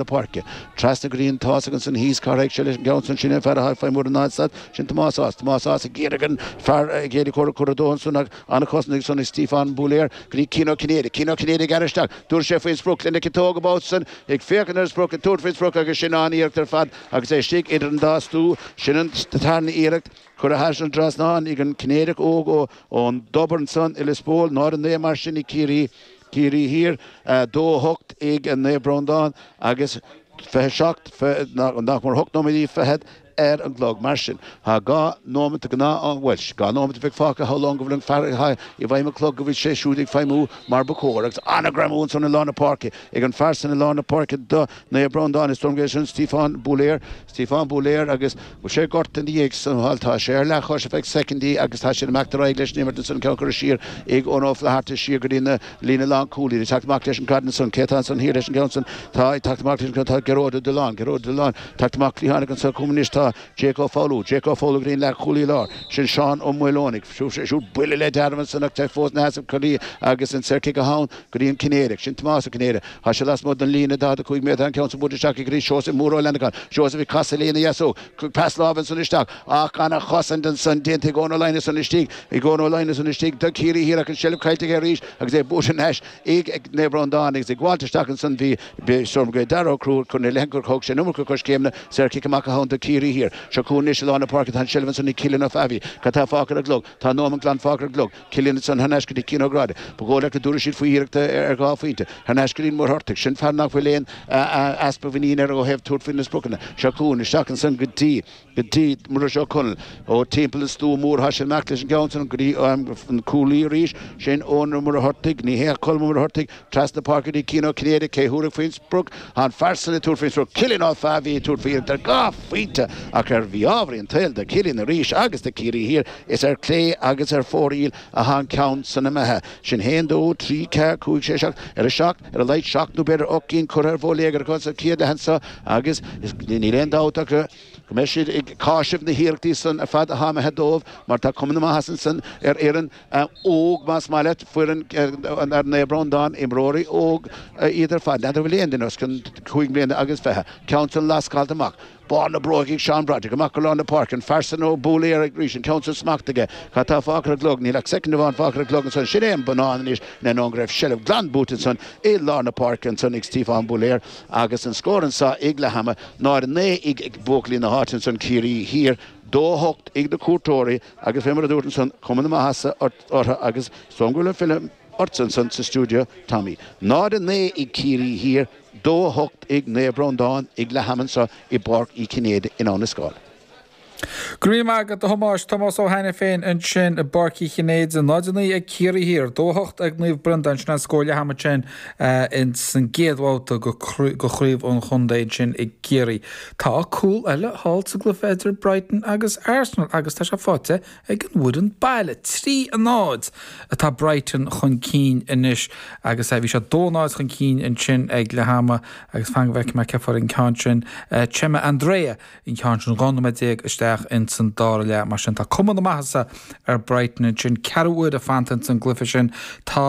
na páirce. Trasna go dtí an tÁghasach ansan thíos. Cá raghadh sé leis an gceann san? Sin é an fear a sháith feadh mhuir an áit stad. Sin Tomás Ághas. Tomás Ághas ag iarraidh an fear ag iarraidh cor a chur dó ansan ach an-chosaint ansan ag Stíofán Búlaéir go dtí Cian Ó Cinnéide. Cian Ó Cinnéide ag gearradh isteach. Tabharfaidh sé faoin sprioc lena chiotóg an babhta san ag féachaint ar an sprioc ag tabhairt faoin sprioc agus sin an-iarracht ar fad agus é istigh idir an dá stú. Sin an tarna iarracht. curtha thar an dtrasnán ag an Cinnéideach óg ón dTobar ansan i Lios Póil. 0-9 mar sin ag Ciarraí. Ciarraí Thiar, 2-8 ag Naomh Breandán agus fiche seacht, nach mór hocht nóimintí fichead ar an gclog. Mar sin, tá dhá nóimeat de ghnáth-am, bhuel, dhá nóimeat a bheidh fágtha samhlaím go bhfuil an fear atá i bhfeighil an chloig go bhfuil sé siúd ag feidhmiú mar ba chóir agus an-ghreim ansan i lár na páirce ag an fear san i lár na páirce do Naomh Breandán. Is dóigh liom gurb é sin Stíofán Búlaéir, Stíofán Búlaéir agus. Bhí sé gortaithe ina dhiaidh san. Bhuel tá sé ar leathchois, ar feadh soicindí, agus tá siad ag imeacht ar aghaidh leis an imirt ansan, ceann curtha siar ag Eoin Ó Flatharta siar go dtí an líne lánchúlaí. Ag teacht amach leis an gcaid ansan. Cé tá ansan thiar leis an gceann san? Tá, ag teacht amach leis an gceann, tá Gearóid Ó Duláin, Gearóid Ó Duláin, ag teacht amach cliathánaigh ansan chugainn anois. Tá Jake Ó Foghlú, Jake Ó Foghlú go dtí an leathchúlaí láir. Sin Seán Ó Maoileoin ag siúl buille le dearmad ansan ach tá fós ina sheasamh ina chorraí agus an saorchic atá ann go dtí an Cinnéideach. Sin Tomás Ó Cinnéide. Thá sé lasmuigh den líne, 45 méadar an ceann san, buailte isteach ag Rí Seosaimh Mór Ó Fhlannacháin. Seosaimh ag casadh lena dheasóg. Cuireadh pas láimhe annsan isteach. Ach an-chosaint annsan, déanta ag Eoin Ó Laighneas annsan istigh. Ag Eoin Ó Laighneas annsan istigh, do Chiarraí Thiar ach an seilbh caillte aige arís agus é buaite thar n-ais ag Naomh Breandán. Agus ag gabháilt isteach annsan bhí Stormont Gael, Darragh Ó Crúthaigh, curtha ina leith gur thug sé an iomarca coiscéimeanna, saorchic amach atá ann do Chiarraí Thiar. Seo chugainn anois i lár na páirce. Tá an seilbh annsan ag Cillian Ó Fáilbhe. Cad tá fágtha ar an gclog? Tá nóimeat glan fágtha ar an gclog. Cillian ansan thar n-ais go dtí Cian Ó Gráda. Ba dhóigh leat go dtabharfaidh siad faoi iarracht ar dhá phointe. Thar n-ais go dtí an Muircheartach. Sin fear nach bhfuil aon easpa muiníne air ó thaobh tabhairt faoi na spriocanna. Seo chugainn isteach ansan go dtí, go dtí, Muiris Ó Conaill. Ó timpeall an stua mór thá sé ag imeacht leis an gceann san go dtí an cúlaí arís. Sin Eoin Ó Muircheartaigh. Ní hea, Colm Ó Muircheartaigh. Trasna páirce go dtí Cian Ó Cinnéide, cé thabharfadh faoin sprioc? Tá an fear san ag tabhairt faoin sprioc, Cillian Ó Fáilbhe ag tabhairt faoi iarracht ar dhá phointe ach ar mhí-ámharaí an tsaoil do Chillian arís agus do Chiarraí Thiar, is ar chlé agus ar fóraoil atá an ceann san imithe. Sin haon dó trí ceathair cúig sé seacht ar a seacht, ar a laghad seacht nó b'fhéidir ocht gcinn curtha ar bhóiléagar acu sa chéad leath anso agus níl aon dabht ach go mbeidh siad ag cáiseamh na hiarrachtaí san ar fad atá imithe dóibh mar tá cuma na maitheasa ansan ar fhoireann óg, más maith leat, foireann Naomh Breandán, imreoirí óg iad ar fad, n'fheadar an bhfuil aon duine os cionn cúig mbliana agus fiche, ceann san lascáilte amach, barr na bróige ag Seán Broderick, amach go lár na páirce, an fear san Búlaéir arís, an ceann san smacht aige, cad tá fágtha ar an gclog, níl ach soicind amháin fágtha ar an gclog ansan, sin é an bonnán anois, in ainneoin go raibh seilbh glan buaite ansan i lár na páirce ansan ag Stíofán Búlaéir agus an scór anso ag leath ama, náid a naoi ag buachaillí na háite ansan, Ciarraí Thiar dó a hocht ag na cuairteoirí. Agus fé mar a dúrt ansan, cuma na maitheasa ort, orthu agus sin go fóill é, fillim ortsa ansan sa stiúideo, Tommy. 00:09 ag Ciarraí Thiar, 02:08 ag Naomh Breandán ag leath ama anso i bPáirc Uí Chinnéide in Abhainn an Scáil. Go raibh maith agat, a Thomáis. Tomás Ó hAiniféin ansin i bPáirc Uí Chinnéide, 00:09 ag Ciarraí Thiar, 02:08 ag Naomh Breandán, sin an scór leath ama sin. ins an gcéad bhabhta go chraobh an chontae ansin i gCiarraí. Tá cúl eile thall sa gcluife idir Brighton agus Arsenal agus tá sé faighte ag an bhfoireann baile. Trí a náid atá Brighton chun cinn anois agus bhí siad dó náid chun cinn ansin ag leath ama agus fan go bhfeicfidh mé cé fuair an ceann sin. Chema Andrés an ceann sin 12 nóiméad isteach ins an dára leath mar sin tá cuma na maitheasa ar Brighton ansin ceathrú uaire fanta ins an gcluife sin tá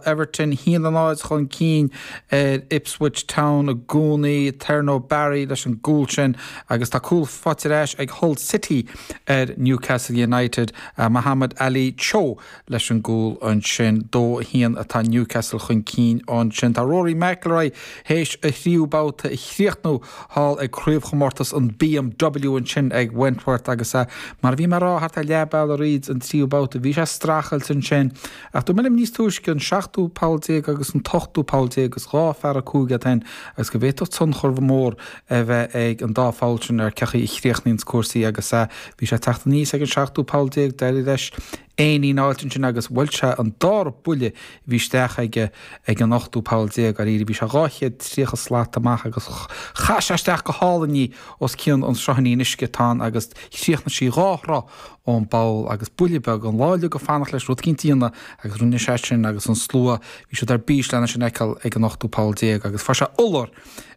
Everton a haon a náid chun cinn ar Ipswich Town i gcónaí Thierno Barry leis an gcúl sin agus tá cúl faighte ar ais ag Hull City ar Newcastle United Mohamed-Ali Cho leis an gcúl ansin. Dó a haon atá Newcastle chun cinn ansin. Tá Rory McIlroy théis a thríú babhta a chríochnú thall ag craobhchomórtas an BMW ansin ag Wentworth agus é, mar a bhí mé a' rá, thart ar leath bealaigh thríd an tríú babhta. Bhí sé a' strachailt ansin. Ach dúirt mé libh níos túisce, an seachtú poll déag agus an t-ochtú poll déag, is dhá phár a cúig iad sin agus go bhféadfadh tionchar mór a bheith ag an dá pholl sin ar cé chaoi a chríochnaíonns cúrsaí agus bhí sé a' teacht aníos ag an seachtú poll déag, d'éirigh leis éinín a fháilt ansin agus bhuel sé an dara buille a bhí isteach aige ag an 18ú poll dáiríre. Bhí sé 230 slat amach agus chaith sé isteach go hálainn í os cionn an sruthán uisce atá ann agus chríochnaigh sí dhá throigh ón bpoll agus buille beag amháin eile ag fanacht leis rud cinnte a dhéanamh agus rinne sé sin agus an slua bhí siad ar bís lena sin fheiceáil ag an 18ú poll agus fuair sé iolar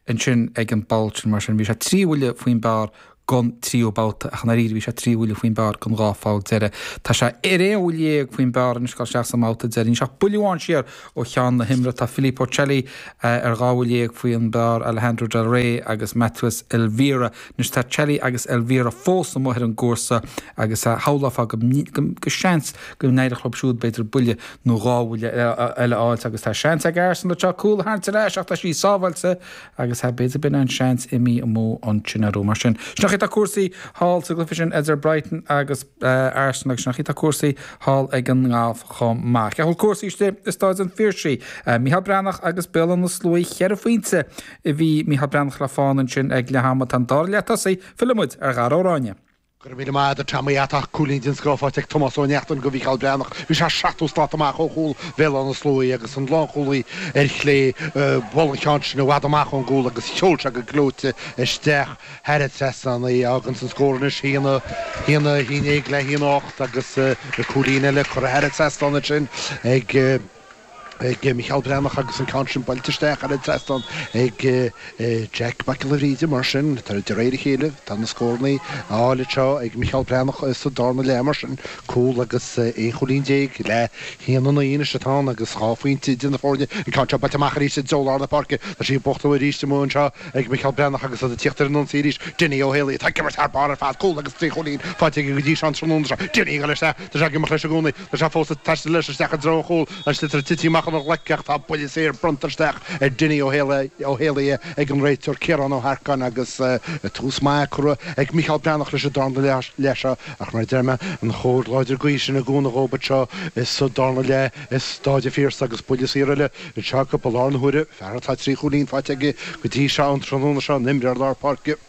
ansin ag an bpoll sin mar sin bhí sé trí bhuille faoin bpár gon tríú babhta, ach i ndáiríre. Bhí sé trí bhuille faoin bpár gon dhá pholl deireadh. Tá sé ar aon bhuille dhéag faoin bpár anois a' goil isteach sa mbabhta deiridh. Níl sé ach buille amháin siar ó cheann na himeartha. Tá Filippo Celli ar dhá bhuille dhéag faoin bpár, Alejandro Del Rey agus Matías Elvira. Anois tá Celli agus Elvira fós amuigh ar an gcúrsa agus shamhlófá go seans go n-éireodh leo siúd b'fhéidir buille nó dhá bhuille eile a fháilt agus tá seans ag Arsenal anseo cúl a tharraingt ar ais ach tá sí sábháilte agus sea b'fhéidir b'in an seans imithe amú ansin orthu mar sin. Sin an chaoi atá cúrsaí thall sa gcluife sin idir Brighton agus Arsenal agus sin an chaoi atá cúrsaí thall ag an ngalf chomh maith. Cé chaoi bhfuil cúrsaí istigh i Stáid an Phiarsaigh. Micheál Breathnach agus Béal na Sluaighe cheithre phointe a bhí Micheál Breathnach le fána ansin ag leath ama. Tá an dara leath tosaithe fillfidh muid ar Dhara Ó Ráinne. Go raibh míle maith ad a Tommy Tá cúilín den scoth faighte ag Tomás Ó Neachtain go Mhícheál Breathnach. Bhí sé seachtó slat amach ó chúl Bhéal-Átha na Sluaighe agus an lánchúlaí ar chlé bhuail an cheann sin i bhfad amach ón gcúl agus sheol sé go gleoite isteach thar an trasnán í. Fhágann san scór anois haon a haon déag le haon a hocht agus cúilín eile curtha thar an trasnán ansin ag. ag Micheál Breathnach agus an ceann sin buailte isteach thar an trasnán ag Jack Mac Giolla Bhríde. Mar sin, de réir a chéile, tá na scórannaí á fháil anseo ag Micheál Breathnach sa darna leath. Mar sin, cúl agus aon chúilín déag le haon a naoi anois atá ann agus dhá phointe idir na foirne. An ceann seo buailte amach arís i dtreo lár na páirce. Tá sí ag buachtú arís amuigh anseo ag Micheál Breathnach agus iad ag tíocht ar an ionsaí arís. Dinny Ó hÉalaithe atá ag imirt thar barr ar fad. Cúl agus trí chúilín faighte aige go dtí seo an tráthnóna seo. Dinny ag dul isteach. Tá sé ag imeacht leis i gcónaí. Tá sé fós ag taisteal leis isteach i dtreo a chúil an sliotar tite amach óna ghlaic ach tá buille saor bronnta isteach ar Dinny Ó hÉalaithe ag an réiteoir Ciarán Ó hEarcáin agus tús maith curtha ag Micheál Breathnach leis an darna leath seo ach mar a deir mé, an chóir láidir gaoithe sin i gcúnamh dhóibh anseo is sa darna leath i Stáid an Phiarsaigh agus buille saor eile anseo acu ball ar na huaire, fear atá trí chúilín faighte aige go dtí seo an tráthnóna seo an imreoir lár páirce.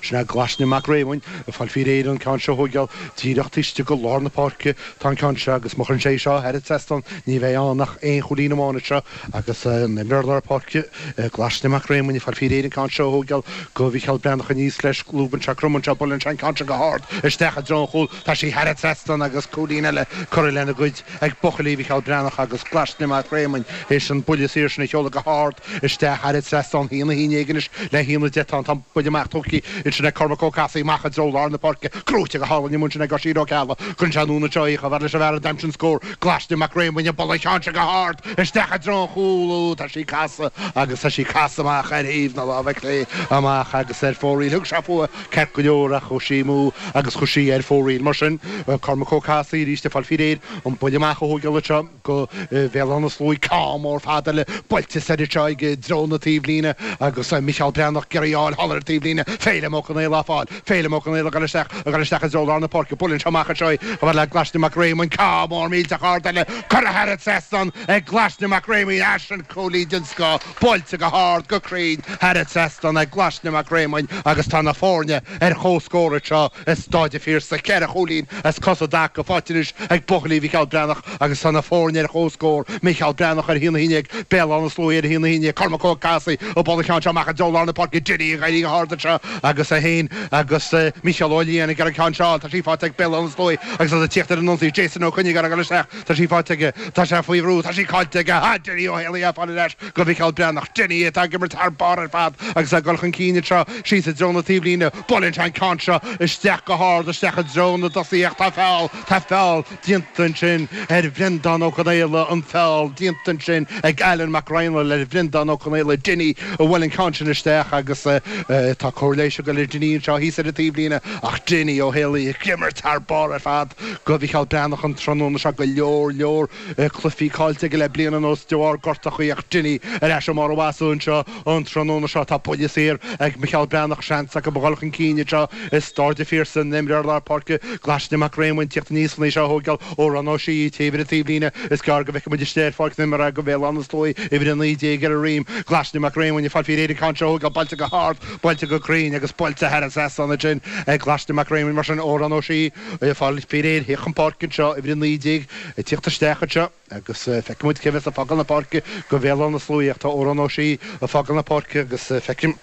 Sin é Glaisne Mac Réamoinn ag fáil faoi réir an ceann seo a thógáil díreach istig go lár na páirce tá an ceann seo agus má chuireann sé é seo thar an trasnán ní bheidh ann ach aon chúilín amháin anseo agus an imreoir lár páirce Glaisne Mac Réamoinn ag fáil faoi réir an ceann seo a thógáil go Mhicheál Breathnach aníos leis lúbann sé cromann sé buaileann sé an ceann seo go hard isteach i dtreo an chúil Tá sí thar an trasnán agus cúilín eile curtha lena gcuid ag buachaillí Mhicheál Breathnach agus Glaisne Mac Réamoinn is an buille saor sin a sheoladh go hard isteach thar an trasnán haon a haon déag anois le haon a deich tá an buille amach tógtha ansin ag Cormac Ó Cathasaigh amach i dtreo lár na páirce gnóite go hálainn amuigh ansin ag Oisín Ó Ceallaigh cuireann sé anuas anseo í chomh fhad leis an bhfear a d'aimsigh an scór Glaisne Mac Réamoinn buaileann sé go hard isteach i dtreo an chúil ó tá sí ag casadh agus tá sí ag casadh amach ar thaobh na láimhe clé amach agus ar fóraoil thug sé fúithi Ceart go leor, ach chuaigh sí amú agus chuaigh sí ar fóraoil. Mar sin, Cormac Ó Cathasaigh arís ag fáil faoi réir an buille amach a thógáil anseo go Béal Átha na Sluaighe, ceann mór fada eile buailte soir anseo i dtreo na taobhlíne agus Mícheál Breathnach ag iarraidh a fáil thall ar an taobhlíne. Féilim Ó Conaola á fáil. Féilim Ó Conaola ag dul isteach, ag dul isteach i dtreo lár na páirce. Buaileann sé amach anseo é, chomh fada le Glaisne Mac Réamoinn, ceann mór millteach ard eile curtha thar an trasnán ag Glaisne Mac Réamoinn. Ó sin cúilín den scoth. Buailte go hard, go cruinn, thar an trasnán ag Glaisne Mac Réamoinn agus tá na foirne ar chomhscór anseo i Stáid a' Phiarsaigh. Ceithre chúilín as cosa i dtaca faighte anois ag buachaillí Mhicheál Breathnach agus tá na foirne ar chomhscór, Micheál Breathnach a haon a haon déag, Béal Átha na Sluaighe a haon a haon déag, Cormac Ó Cathasaigh ag bualadh an ceann seo amach i dtreo lár na páirce, Dinny ag éirí go hard anseo agus é féin agus Micheál Ó Leidhin ag iarraidh ceann seo, tá sí faighte ag Béal Átha na Sluaighe agus iad ag tíocht ar an ionsaí, Jason Ó Coinnigh ag dul isteach. Tá sí faighte aige. Tá sé faoi bhrú. Tá sí caillte aige. Tá Dinny Ó hÉalaí á fáil ar ais go Mhicheál Breathnach. Dinny atá ag imirt thar barr ar fad agus ag dul chun cinn anseo síos i dtreo na taobhlíne. Buaileann sé an ceann seo isteach go hard isteach i dtreo na dtosaithe ach tá feall, tá feall déanta ansin ar Bhreandán Ó Conaola, an feall déanta ansin ag Alan Mac Raghnaill ar Bhreandán Ó Conaola. Dinny a bhuail an ceann sin isteach agus tá cóir leighis ag dul ar Dinny anseo thíos ar an taobhlíne ach Dinny Ó hÉalaí ag imirt thar barr ar fad. go Mhicheál Breathnach an tráthnóna seo go leor, leor cluifí cáillte aige le bliain anuas de bharr gortaíochaí ach Dinny ar ais i mbarr a mhaitheasa anseo an tráthnóna seo. Tá buille saor ag Micheál Breathnach, seans acu a dhul chun cinn anseo i Staid an Phiarsaigh an t-imreoir lár páirce Glaisne Mac Réamoinn ag tíocht aníos len é seo a thóigeál Odhrán Ó Sé ag téamh ar an taobhlíne. Is gearr go bhfeicfidh muid istigh ar pháirc na himeartha go Bhéal Átha na Sluaighe uimhir a naoi déag ar a dhroim. Glaisne Mac Réamoinn ag fáil faoi réir an ceann seo a thóigeál buailte go hard, buailte go cruinn agus buailte thar an trasnán ansin ag Glaisne Mac Réamoinn mar sin Odhrán Ó Sé. Ag fáil faoi réir le thíocht chun páirce anseo uimhir 19 ag tíocht isteach anseo agus feicfidh muid cé a bheas ag fágáil na páirce go Bhéal Átha na Sluaighe ach tá Odhrán Ó Sé ag fágáil na páirce agus feicim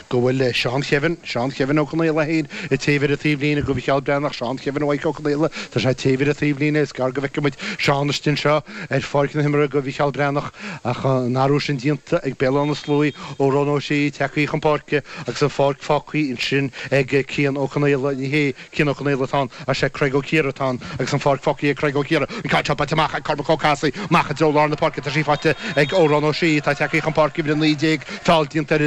go bhfuil Seán Kevin, Seán Kevin Ó Conaola féin ag téamh ar an taobhlíne go Mhicheál Breathnach, Seán Kevin Mhaidhc Ó Conaola, tá sé ag téamh ar an taobhlíne, is gearr go bhfeicfidh muid Seán istigh anseo ar pháirc na himeartha go Mhicheál Breathnach ach an t-athrú sin déanta ag Béal Átha na Sluaighe Odhrán Ó Sé tagthaí chun páirce agus an pháirc fágthaí ansin ag Cian Ó Conaola. Ní hé Cian Ó Conaola atá ann ach sé Craig Ó Ciardha atá ann agus an pháirc fágthaí ag Craig Ó Ciardha. An ceann seo buailte amach ag Cormac Ó Casaigh amach i dtreo lár na páirce tá sí faighte ag Odhrán Ó Sé atá tagthaí chun páirce uimhir a naoi déag feall déanta ar